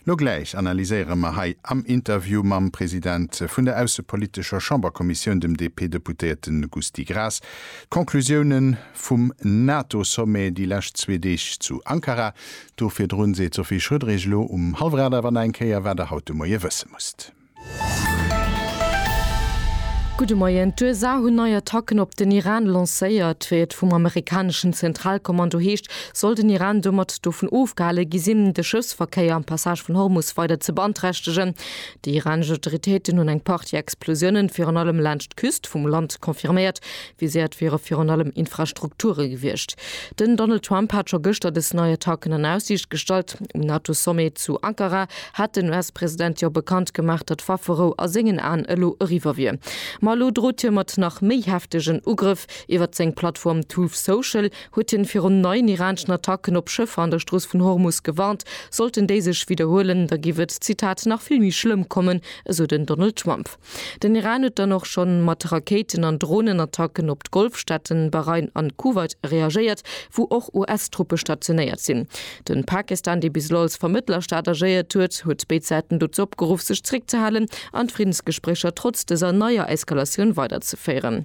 Lo gläich analyséiere mer hei am Interview mam President vun der aussepolitescher Chamberkommissioun, dem DP-Deputéierte Gusty Graas, d'Conclusioune vum NATO-Sommet déi lescht zwee Deeg zu Ankara. Do virdrun seet d'Sophie Schröder Iech elo um Hallwrad awer nach eng Kéier, wat Der haut de Moie wësse musst. Gudde Moien. D'USA hunn nei Attacken op den Iran lancéiert. Wéi et vum amerikaneschen Zentralkommando heescht, soll den Iran domat dovun ofgehale gi sinn, de Schëffsverkéier am Passage vun Hormus weider ze beanträchtegen. Déi iranesch Autoritéiten hunn eng Partie Explosiounen virun allem laanscht d'Küst vum Land confirméiert, Viséiert wiere virun allem Infrastrukture gewiescht. Den Donald Trump hat scho gëschter dës nei Attacken an Aussiicht gestallt. Um NATO-Sommet zu Ankara hat den US-President jo bekannt gemaach, datt Wafferou a sengen Aen elo eriwwer wier. Ma elo drot hie mat nach méi heftegen Ugrëff. Iwwert seng Plattform Truth Social huet hien virun neien iraneschen Attacken op Schëffer an der Strooss vun Hormus gewarnt. Sollten déi sech widderhuelen, da giff et, Zitat, nach vill méi schlëmm kommen, esou den Donald Trump. Den Iran huet dann och schonn mat Rakéiten an Dronenattacken op d'Golfstaaten Bahrain an Kuwait reagéiert, wou och US-Truppe stationéiert sinn. Den Pakistan, dee bis elo als Vermëttlerstaat agéiert huet, huet béid Säiten dozou opgeruff sech zeréckzehalen an d'Friddensgespréicher trotz dëser neier Eskalatioun weiderzeféieren.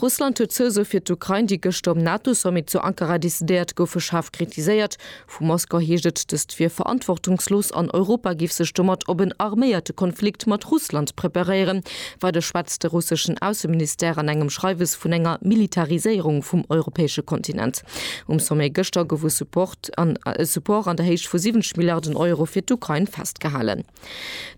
Russland huet d'Zousou fir d'Ukrain, déi gëschter um NATO-Sommet zu Ankara decidéiert goufe, schaarf kritiséiert. Vu Moskau heescht et, dëst wier verantwortungslos an Europa géif sech domat op en arméierte Konflikt mat Russland preparéieren. Weider schwätzt de russeschen Ausseministère an engem Schreiwes vun enger Militariséierung vum europäesche Kontinent. Um Sommet gëschter gouf e Support an der Héicht vu 70 Milliarden Euro fir d'Ukrain festgehalen.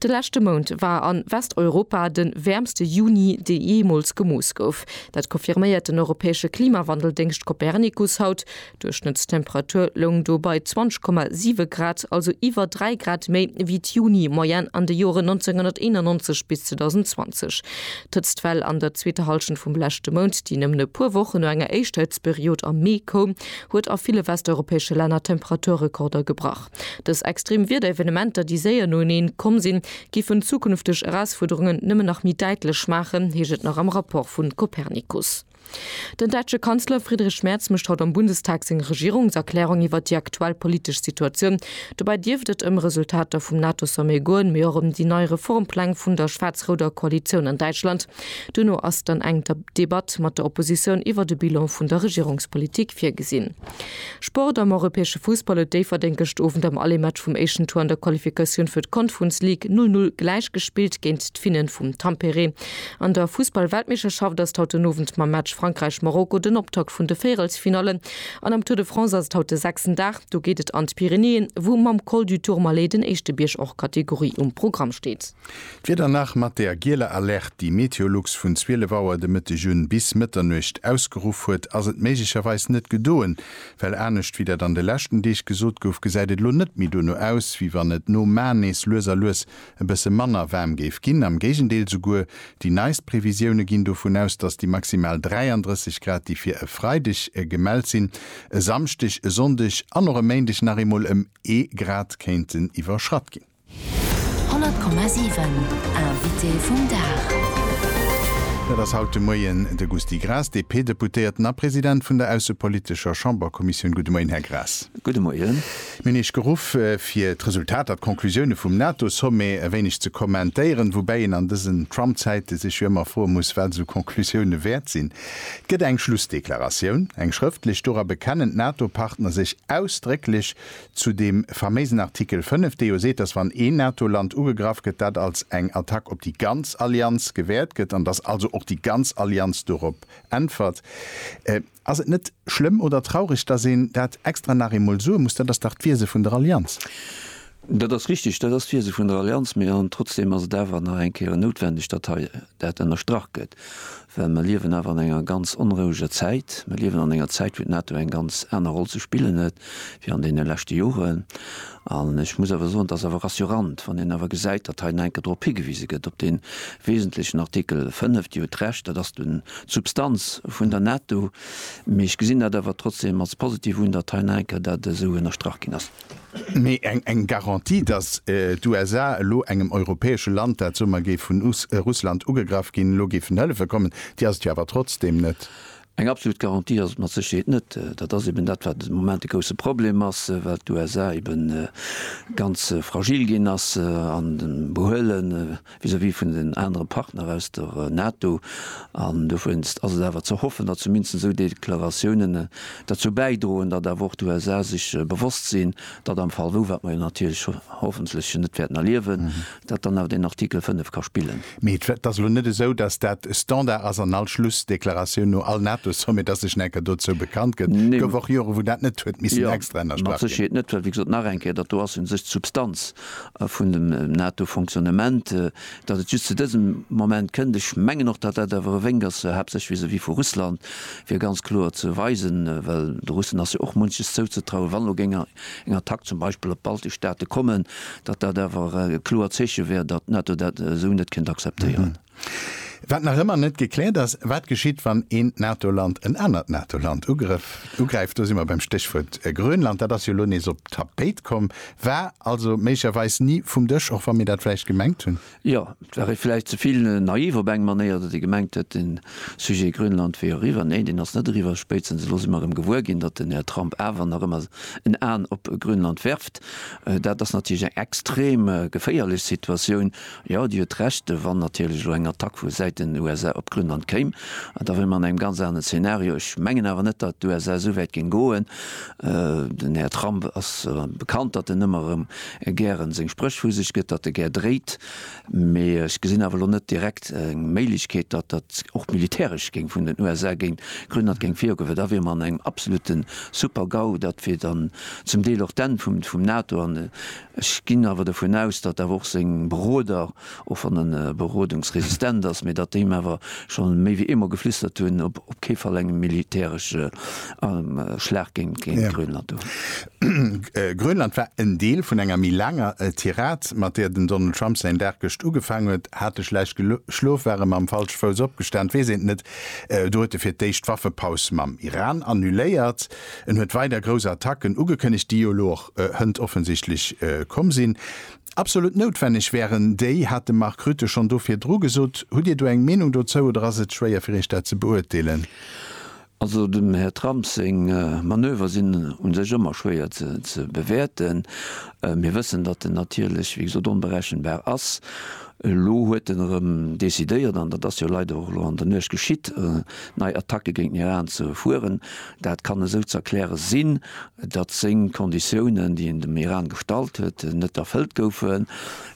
De leschte Mount war a Westeuropa de wäermste Juni, dee jeemools gemooss gouf. Dat confirméiert den europäesche Klimawandeldéngscht Copernicus haut. D'Duerchschnëttstemperatur loung do bei 20,7 Grad, also iwwer 3 Grad méi wéi d'Juni-Moyenne an de Joren 1991 bis 2020. D'Hëtztwell an der zweeter Hallschent vum leschte Mount, déi nëmmen e puer Wochen no enger éischter Hëtztperiod am Mee koum, huet a ville westeuropäesche Länner Temperaturrekorder gebrach. Dës extrem Wiederevenementer, déi séier noeneen komm sinn, géifen zukünfteg Erausfuerderungen nëmmen nach méi däitlech maachen, heescht et nach am Rapport vun Copernicus. Den däitsche Kanzler Friedrich Merz mécht haut am Bundestag seng Regierungserklärung iwwert déi aktuell politesch Situatioun. Dobäi dierft et ëm Resultater vum NATO-Sommet goen, mee och ëm déi nei Reformpläng vun der schwaarz-rouder Koalitioun an Däitschland. Duerno ass dann eng Debatt mat der Oppositioun iwwert e Bilan vun der Regierungspolitik virgesinn. Sport, Am europäesche Fussball huet Déifferdeng gëscht Owend am Allé-Match vum éischten Tour an der Qualifikatioun fir d'Conference League null null gläich gespillt géint d'Finnen vum Tampere. An der Fussball-Weltmeeschterschaft ass et haut den Owend mam Match Frankräich-Marokko den Optakt vun de Véierelsfinallen. An am Tour de France ass et haut de sechsten Dag. Do geet et an d'Pyrenäen, wou mam Col du Tourmalet den éischte Bierg hors catégorie um Programm steet. D'Wieder nach mat der gieler Alerte, déi Meteolux vun 12 Auer de Mëtteg un bis Mëtternuecht ausgeruff huet, ass et méiglecherweis net gedoen, well anescht wéi dat an de leschten Deeg gesot gouf, gesäit et elo net méi dono aus, wéi wann et no mar nees lues a lues e bësse manner waarm géif ginn. Am Géigendeel, souguer déi neist Previsioune ginn dovun aus, datt déi maximal 33 Grad, déi fir e Freideg gemellt sinn, e Samschdeg, e Sonndeg an och e Méindeg nach eemol ëm ee Grad kéinten iwwerschratt ginn. 100,7 Invité vum Dag. Dat ass haut de Moien de Gusty Graas, DP-Deputéierten a President vun der aussepolitescher Chamberkommissioun. Gudde Moien, Här Graas. Gudde Moien. Mir hunn Iech geruff, fir d'Resultater, d'Conclusioune vum NATO-Sommet e wéineg ze kommentéieren, woubäi een an dësen Trump-Zäite sech jo ëmmer froe muss, wat esou Conclusioune wäert sinn. Et gëtt eng Schlussdeklaratioun, eng schrëftlech. Dora bekennen d'NATO-Partner sech ausdrécklech Zu deem faméisen Artikel 5, dee jo seet, dass wann een NATO-Land ugegraff gëtt, dat als eng Attack op déi ganz Allianz gewäert gëtt an dass also och déi ganz Allianz dorop äntwert. Ass et net schlëmm oder traureg, dass een dat extra nach eemol soe muss? Dat ass dach d'Wiese vun der Allianz. Dat ass richtig, dat ass d'Wiese vun der Allianz. Mee an trotzdem ass et awer nach eng Kéier noutwendeg, datt hei dat ënnerstrach gëtt. Well mer liewen awer an enger ganz onroueger Zäit. Mer liewen an enger Zäit, wou d'NATO eng ganz aner Roll ze spillen huet wéi an deene leschte Joren. An ech muss awer soen, dat ass awer rassurant, wann een awer gesäit, datt hei nach eng Kéier drop higewise gëtt, op dee wesentlechen Artikel 5. Dir hutt Recht, dat ass dunn d'Substanz vun der NATO. Mee ech gesinn dat awer trotzdem als positiv un, datt hei nach eng Kéier dat esou ënnerstrach ginn ass. Mee eng Garantie, datt d'USA elo engem europäesche Land, dat Summer géif vun Russland ugegraff ginn, elo géifen hëllefe kommen, déi ass et jo awer trotzdeem net. Eng absolut Garantie ass et mat Sécherheet net. Dat ass eben dat, wat de Moment de grousse Problem ass, well d'USA eben ganz fragil ginn ass am Behuelen. vis-à-vis vun den anere Partner aus der NATO, an dowéinst ass et awer ze hoffen, datt zumindest esou Deklaratiounen derzou bäidroen, datt awer och d'USA sech bewosst sinn, datt am Fall wou, wat mer jo natierlech hoffentlech net wäerten erliewen, datt dann awer deen Artikel 5 ka spillen. Mee et ass elo net esou, datt dat Standard ass an all Schlussdeklaratioun no all NATO-Sommet, datt sech enker dozou bekannt gëtt. Et gouf och Joren, wou dat net huet missen extra ënnerstrach ginn. Mat Sécherheet net, well wéi gesot nach eng Kéier, datt do ass u sech d'Substanz a vun dem NATO-Fonctionnement, datt et just zu dësem Moment kënnt. Ech mengen och, datt dat awer e Wénk ass, haaptsächlech vis-à-vis vu Russland, fir ganz kloer ze weisen, well de Russen ass jo och munches zouzetrauen, wann elo géing eng Attack zum Beispill op d'baltesch Staate kommen, datt dat awer e kloert Zeeche wär, datt d'NATO dat esou net kéint akzeptéieren. Wat nach ëmmer net gekläert ass, wat geschitt, wann eent NATO-Land en anert NATO-Land ugrëff, ugräift. Do si mer beim Stéchwuert Grönland. Dat ass jo elo nees op d'Tapéit komm, war also méiglecherweis ni vum Dësch, och wa mir dat vläicht gemengt hunn. Jo, et war ee vläicht ze vill naiv op eng Manéier, datt ee gemengt huet, de Sujet Grönland wier eriwwer. Neen, deen ass net eriwwer. Spéitstens elo si mer erëm gewuer ginn, datt den Här Trump awer nach ëmmer en Aen op Grönland werft. Dat ass natierlech eng extrem geféierlech Situatioun. Jo, Dir hutt Recht, wann natierlech elo eng Attack vu Säit den USA op Grönland kéim, da wier mer an engem ganz anere Szenario. Ech mengen awer net, datt d'USA esou wäit géing goen. Den Här Trump ass bekannt, datt en ëmmer erëm gären seng Spréch vu sech gëtt, datt e gär dréit. Mee ech gesinn awer elo net direkt eng Méiglechkeet, datt dat och militäresch géing vun den USA géint Grönland géing virgoen, well da wier mer an engem absolutte Super-GAU. Dat wier dann zum Deel och d'Enn vum NATO. Ech ginn awer dovun aus, datt awer och seng Beroder, och wann en berodungsresistent ass, mee datt déi him awer scho méi wéi eemol geflüstert hunn, op kee Fall engem militäresche Schlag géint Grönland do. Grönland war en Deel vun enger méi laanger Tirade, mat där den Donald Trump säin Dag gëscht ugefaangen huet. Hat e schlecht geschlof? War e mam falsche Fouss opgestan? Weess een et net. Do huet e fir d'éischt d'Waffepaus mam Iran annuléiert. En huet weider grouss Attacken ugekënnegt, déi jo elo och hënt offensichtlech komm sinn. Absolut noutwenneg wären déi, hat de Mark Rutte schonn do virdru gesot. Hutt Dir do eng Meenung dozou oder ass et schwéier fir Iech dat ze beurteelen? Also dem Här Trump seng Manöver sinn u sech ëmmer schwéier ze bewäerten. Mir wëssen, datt en natierlech, wéi gesot, onberechenbar ass. Elo huet en erëm decidéiert, an dat ass jo leider och elo an der Nuecht geschitt, nei Attacke géint den Iran ze fueren. Dat kann esou ze erkläre sinn, datt seng Konditiounen, déi en dem Iran gestallt huet, net erfëllt goufen.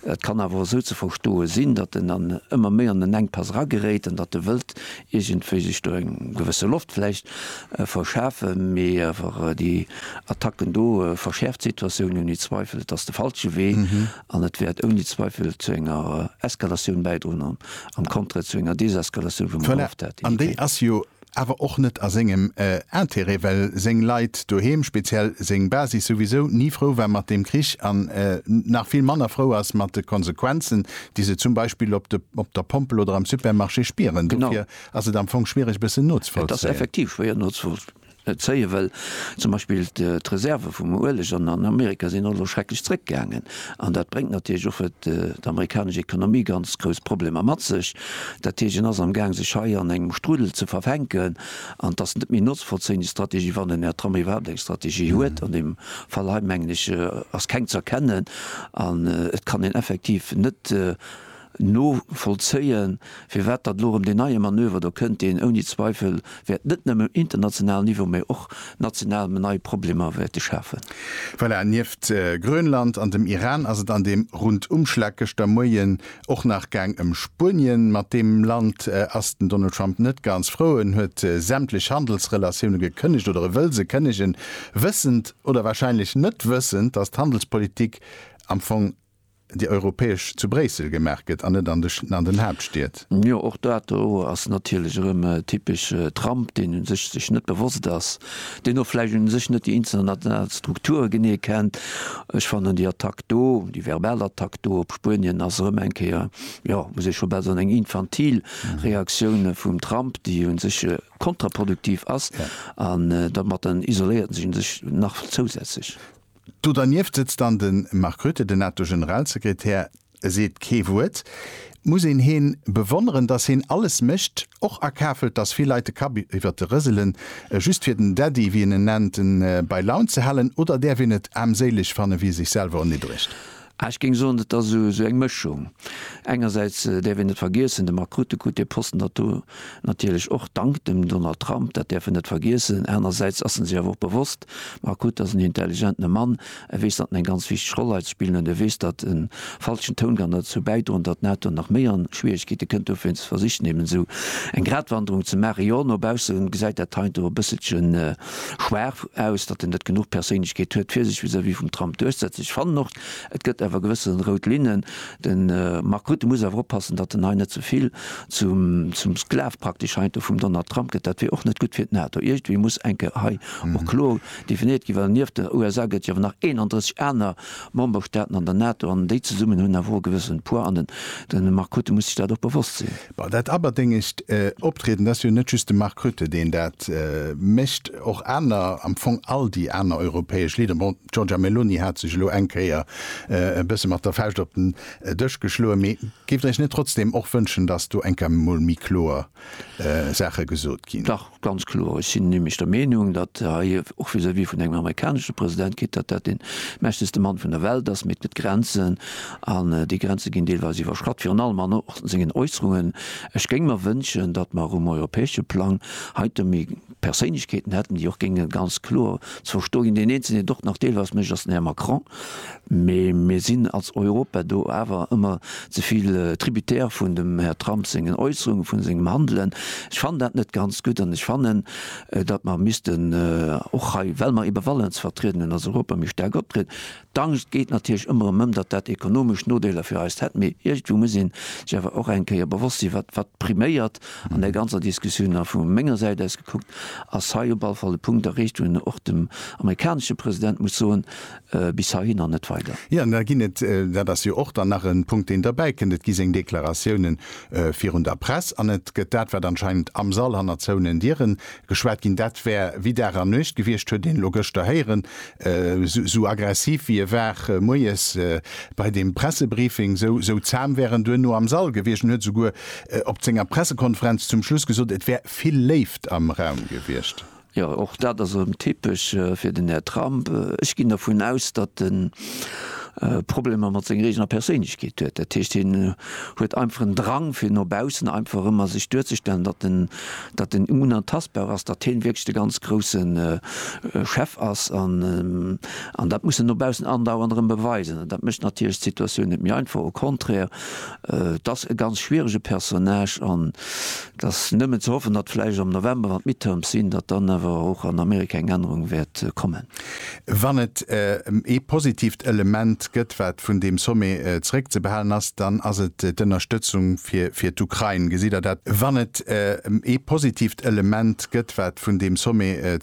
Et kann awer och esou ze verstoe sinn, datt en an ëmmer méi an en Enkpass erageréit an datt e wëllt iergendwéi sech do eng gewësse Loft vläicht verschafe mee awer déi Attacken do verschäerft d'Situatioun ouni Zweifel. Et ass de falsche Wee. An et wäert ouni Zweifel zu enger Eskalatioun bäidroen an am Contraire zu enger Deseskalatioun vum Voilà, an déi ass jo awer och net a sengem Intérêt, well seng Leit doheem, speziell seng Basis, souwisou ni frou war mat deem Krich an nach vill manner frou ass mat de Konsequenzen, déi se zum Beispill op der Pompel oder am Supermarché spieren. Dofir ass et am Fong schwiereg e bëssen nozevollzéien. Et ass effektiv schwéier nozevollzéien. net zéie wëll. Zum Beispill d'Reserve vum Ueleg an Amerika sinn elo schrecklech zréckgaangen an dat bréngt natierlech och fir d'amerikanesch Ekonomie ganz grouss Problemer mat sech. Dat heescht, en ass am Gaang sech hei an engem Strudel ze verfänken an et ass net méi notzvollzéien, déi Strategie, wann den Här Trump iwwerhaapt eng Strategie huet. An deem Fall hei, mengen ech, ass keng z'erkennen an et kann een effektiv net novollzéien, firwat datt elo erëm deen neie Manöver do kënnt, deen ouni Zweifel wäert net nëmme um internationalen Niveau, mä och national nei Problemer wäerte schafen. Voilà, nieft Grönland an dem Iran ass et an deem Rundumschlag gëschter Moien och nach gaang ëm Spuenien. Mat deem Land ass den Donald Trump net ganz frou. En huet sämtlech Handelsrelatioune gekënnegt, oder e wëll se kënnegen, wëssend oder warscheinlech net wëssend, datt d'Handelspolitik am Fong déi europäesch zu Bréissel gemaach gëtt an net an de an den Haaptstied. Jo, och dat do ass natierlech erëm e typesche Trump, deen u sech sech net bewosst ass, deen och vläicht u sech net déi international Strukture genee kennt. Ech fannen déi Attack do, déi verbal Attack do op Spuenien ass erëm eng Kéier, jo, muss ee scho bal soen, eng infantil Reaktioun vum Trump, déi u sech kontraproduktiv ass an domat isoléiert en sech u sech nach zousätzlech. Do dernieft sëtzt dann de Mark Rutte, den NATO-Generalsekretär, e seet kee Wuert. Muss een heen bewonneren, datt heen alles mécht, och akafelt, datt vill Leit de Kapp iwwert de rëselen, just fir den Daddy, wéi en en nennt, bei Laun ze halen, oder däerf een et aarmséileg fanne wéi e sech selwer erniddregt? Ah, ech géing soen, et ass esou eng Mëschung. Engersäits däerf een net vergiessen, de Mark Rutte krut dee Posten dat do natierlech och dank dem Donald Trump, dat däerf en net vergiessen. Anersäits ass en sech awer och bewosst, de Mark Rutte ass en intelligentene Mann, e weess, datt en eng ganz wichteg Roll hei ze spillen huet, e weess, datt e falschen Toun kann derzou bäidroen, datt d'NATO nach méi an Schwieregkeete kënnt. Dofir versicht en eben esou eng Gratwanderung ze maachen. Jo, no bausse gesäit dat heiansdo e bësselchen. Schwaach, aus datt en net genuch Perséinlechkeet huet fir sech vis-à-vis vum Trump duerchsetzen. Ech fannen och, et gëtt awer gewësse rout Linnen. De Mark Rutte muss awer oppassen, datt en hei net zevill zum Sklav praktesch heiansdo vum Donald Trump gëtt. Dat wier och net gutt fir d'NATO. Iergendwéi muss eng Kéier hei och kloer definéiert ginn, well nieft den USA gëtt et jo awer nach 31 aner Memberstaaten an der NATO an déi zesummen hunn awer och e gewëssene Poids an de Mark Rutte muss sech dat och bewosst sinn. Bon, dat aberdéngegt Optrieden, dat ass jo net just de Mark Rutte, deen dat mécht, och aner, am Fong all déi aner europäesch Leader, bon, d'Giorgia Meloni hat sech elo eng Kéier e bësse mat der Fauscht op den Dësch geschloen, mee géift Der Iech net trotzdem och wënschen, datt do eng Kéier emol méi kloer Saache gesot ginn? Dach, Ganz kloer. Ech sinn nämlech der Meenung, datt hei och vis-à-vis vun engem amerikanesche President geet, datt dat dee mächtegste Mann vun der Welt ass. Mee et gëtt Grenzen, an déi Grenze ginn deelweis iwwerschratt, virun allem an och sengen Äusserungen. Ech géing mer wënschen, datt mer um europäesche Plang heite méi Perséinlechkeeten hätten, déi och géinge ganz kloer ze verstoe ginn. Deen Eenzelen, deen et och nach deelweis mécht, ass den Här Macron. Mee mir sinn als Europa do awer ëmmer ze vill Tributaire vun dem Här Trump sengen Äusserungen, vun sengem Handelen. Ech fannen dat net ganz gutt an ech fannen, datt mer missten och hei, well mer eebe Walen ze vertrieden hunn, als Europa méi staark optrieden. D'Angscht geet natierlech ëmmer erëm ëm, datt dat ekonomesch Nodeeler fir eis hätt. Mee iergendwou muss ee sech awer och eng Kéier bewosst sinn, wat, wat priméiert an där ganzer Diskussioun. A vu menger Säit aus gekuckt ass hei op alle Fall e Punkt erreecht, wou een och dem amerikanesche President muss soen, bis heihin an net weider. Jo, da ginn et, dat ass jo och dann nach e Punkt, deen derbäikënnt, et gi seng Deklaratiounen virun der Press an et gëtt dat, wat anscheinend am Sall hanner zouenen Diere geschwat ginn, dat wär wéi Dag a Nuecht gewiescht, huet een elo gëschter héieren. Esou aggressiv, wéi e war moies bei deem Pressebriefing, esou zam wär en duerno am Sall gewiescht. En huet esouguer op senger Pressekonferenz zum Schluss gesot, et wär vill Léift am Raum gewiescht. Jo, och dat ass erëm typesch fir den Här Trump. Ech ginn dervun aus, datt e Problemer mat senger eegener Perséinlechkeet huet. Dat heescht, hien huet einfach en Drang, fir no baussen einfach ëmmer sech duerzestellen, datt en, datt en unantastbar ass, datt hien wierklech de ganz grousse Chef ass. An, an dat muss en no baussen andauernd erëm beweisen. An dat mécht natierlech d'Situatioun net méi einfach, au contraire. Et ass e ganz schwierege Personnage an et ass nëmmen ze hoffen, datt vläicht am November, wann d'Midterms sinn, datt dann awer och an Amerika eng Ännerung wäert kommen. Wann et ee positiivt Element gëtt, wat vun deem Sommet zeréckzebehalen ass, dann ass et d'Ënnerstëtzung fir d'Ukrain. Gesitt Der dat? Wann et ee positiivt Element gëtt, wat vun deem Sommet.